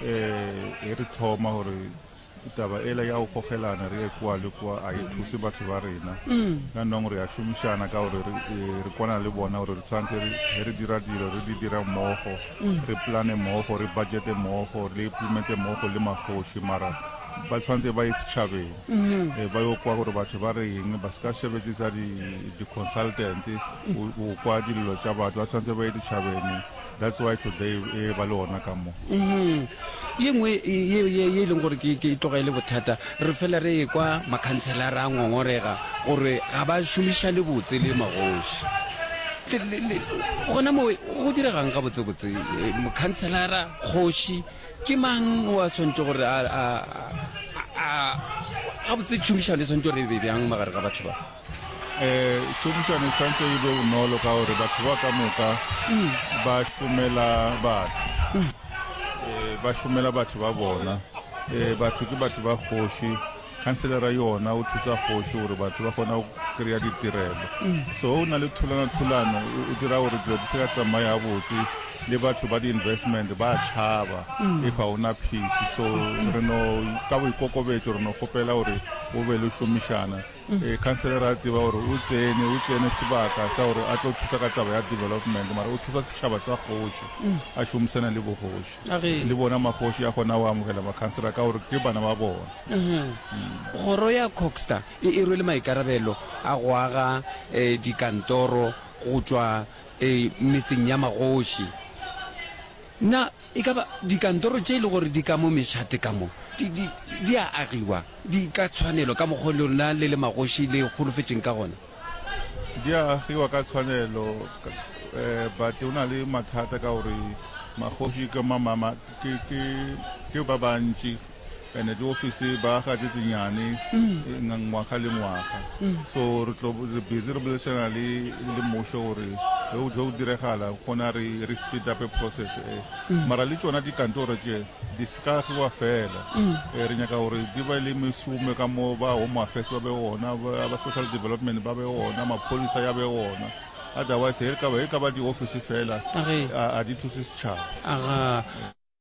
Ee, e re thoma gore taba ela ya go gogelana re ye kwa le kwa a e thuse batho ba rena ka nong re a šomišana ka gore re e, re kwana le bona gore re tshwanetse re ge re dira dilo re di dira mmogo re plane mmogo re budgete mmogo re implemente mmogo le magoši mara ba tshwanetse ba ye setšhabeng um ba yo kwa gore batho ba re eng ba se ka sebetse tsa di-consultant o kwa dilelo tša batho ba tshwanetse ba ye ditšhabeng That's why today e ba le ona ka mo. Mhm. Ye nngwe ye ye ye leng gore ke ke tloga ile bothata re fela re kwa makhantsela ra ngongorega gore ga ba šomiša le botse le magoši. Gona mo go diregang ga botse botse eh, mokhantsela kgoši ke mang wa swantse gore a a a ga botse tšhomišano e swantse re be bjang magare ga batho ba. um šomišano e tshwanetse e be bonolo ka gore batho ba ka moka mm. ba šomela batho um ba šomela batho ba bona um batho ke batho ba kgoši khanselera yona o thusa kgoši gore batho ba kgona go kry-a ditirelo mm. so o na le thulana-thulano o dira gore dilo di se ka tsamaya botse le batho ba di-investment ba tšhaba mm. if ga ona peace so re no ka boikokobetso re no kgopela gore o be le šomišana Ee, councillor ra tseba gore o tsene o tsene sebaka sa gore a tlo thusa ka taba ya development mara o thusa setšhaba sa kgoši a šomisana le bogoši le bona magoši a kgona go amogela ba-councillor ka gore ke bana ba bona kgoro ya coxta e e rwele maikarabelo a go aga um dikantoro go tšwa um metseng ya magoši na E ka ba dikantoro tše e lego gore di ka mo Mechate ka mo, di, di, di a agiwa, di ka tshwanelo, ka mokgwa o lona le le magoši le holofetšeng ka gona. Di a agiwa ka tshwanelo, ka, eh, but o na le mathata ka gore magoši ke, ma, ma, ma, ke, ke, ke ba bantši. and di office ba ga tse tsenyane ngwaga le ngwaga so re tlo re busy re bolesana le le mosho gore ge o tlo diregala gona re re speed up process e mara le tsona dikantoro tše di ska fiwa fela re nyaka gore di ba le mešome ka mo ba home affairs ba be ona ba social development ba be ona mapholisa ya be ona otherwise e ka ba e ka ba di office fela a di thuse setšhaba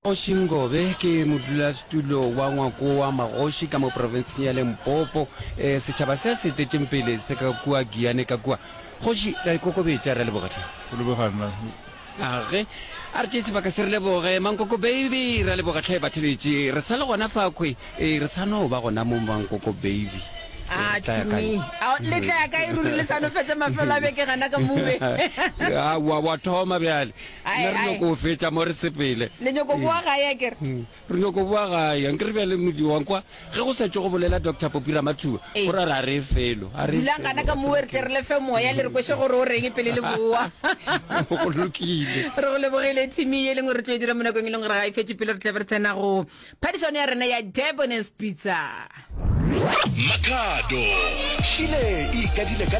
Kgoši Ngobe ke modulasetulo wa ngwako wa magoši ka mo profenseng ya Lempopo. E, setšhaba se se etetšeng pele se ka kua Giyane ka kua. Kgoši, ra ikokobetša, ra leboga hle. Go leboga nna. Age, a re tšee sebaka se re leboge. Mankoko Baby, ra leboga hle batheletši. Re sa le gona fakhwi, e, re sa no ba gona mo Mankoko Baby. A to me, a le tla ya kae ruri le sa no fetša mafelo a beke gana ka move. Aowa, wa thoma bjale. Ae, Nna re ae. nyoko go fetša mo re sepele le nyoko boa gae a kere Mm, re nyoko boa gae nke re bjale modi wa nkwa ge go sa tšwe go bolela doctor popi ramathuba Ee. gore a re a re felo a re dulang kana ka moe re tle re lefe moya le re kwese gore o reng pele le boa go lokile re go lebogile thimi ye e leng gore re tlo e dira mo nakong e leng gore ga e fetse pele re tle be re tsena go phadišano ya rena ya debones pizza Makhado. Šile e ikadile ka